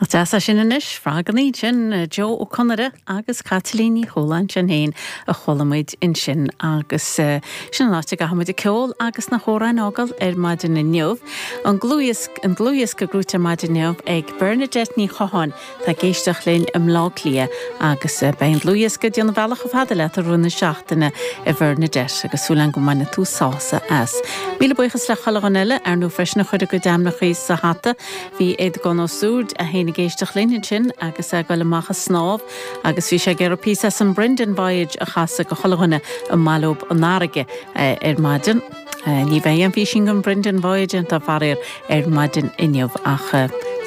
Nach deas é sin anois? Fágann iad sin, Joe Ó Conaire agus Caitlín Ní Chualáin, sinn féin, a chuala muid ansin agus sin an áit a gcaithfidh muid an ceol agus na hamhráin a fhágáil ar maidin inniu. An dlúthdhiosca, an dlúthdhiosca gnóthaithe ar maidin inniu ag Bernadette Ní Chatháin, atá ag éisteacht linn i mBleá Cliath agus beidh an dlúthdhiosca ag déanamh a bhealach chomh fada leat i rith na seachtaine a Bhernadette agus súil agam go mbainfidh tú sásamh as. Míle buíochas le chuile dhuine eile, ar ndóigh freisin a chuir a gcuid ainmneachaí sa hata, Bhí Aodhagán Ó Súird, é féin ag éisteacht linn ansin agus é ag dul amach a snámh agus bhí sé ag iarraidh píosa as an Brendan Voyage a chasadh go chuile dhuine a mb'áil leob an fharraige ar maidin. Ní bheidh aon phísín den Brendan Voyage déanta, faraor, ar maidin inniu ach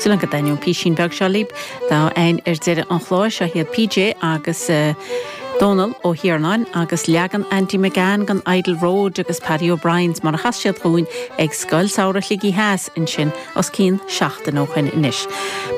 súil agam go dtaitneoidh an písín beag seo libh atá againn ar deireadh an chláir. Seo iad PJ agus Dónal Ó hIarnáin agus leagan Andy McGann den 'Idle Road' agus Paddy O'Briens mar a chas siad dhúinn ag Scoil Samhraidh Shligigh Theas ansin Os cionn seachtain ó shoin anois.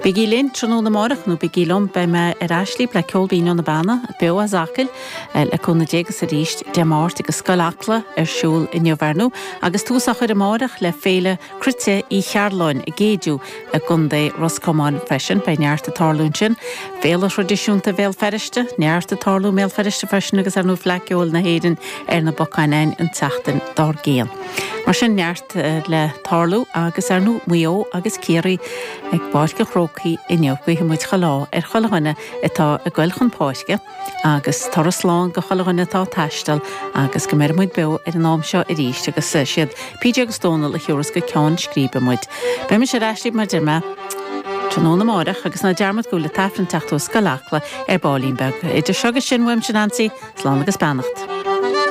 Bígí linn tráthnóna amárach, nó bígí liom, beidh mé ar ais lib le Ceol Binn ó na Beanna, beo as Acaill, le cúnamh Dé agus arís Dé Máirt agus Scoil Acla ar siúl inniu ar ndóigh agus tús á chur amárach le Féile Cruite Uí Chearláin i gCéideadh i gContae Ros Comáin freisin. Beidh neart ag tarlú ansin. Féile thraidisiúnta Bhéal Feirste, neart ag tarlú i mBéal Feirste freisin agus ar ndóigh Fleadh Ceoil na hÉireann ar na bacáin againn an tseachtain dár gcionn. Mar sin neart. le tarlú agus ar ndóigh Maigh Eo agus Ciarraí ag Páirc an Chrócaigh inniu guífidh muid chuile ádh ar chuile dhuine atá ag goil chun páirce agus turas slán go chuile dhuine atá ag taisteal agus go mbeir muid beo ar an am seo arís agus is iad PJ agus Dónal a thabharfas go ceann scríbe muid. Beidh mise ar ais libh mar a deir mé tráthnóna amárach agus ná dearmad go bhfuil an tAifreann ag teacht ó Scoil Acla ar baillín beag. Idir seo agus sin uaimse Neansaí, slán agus beannacht.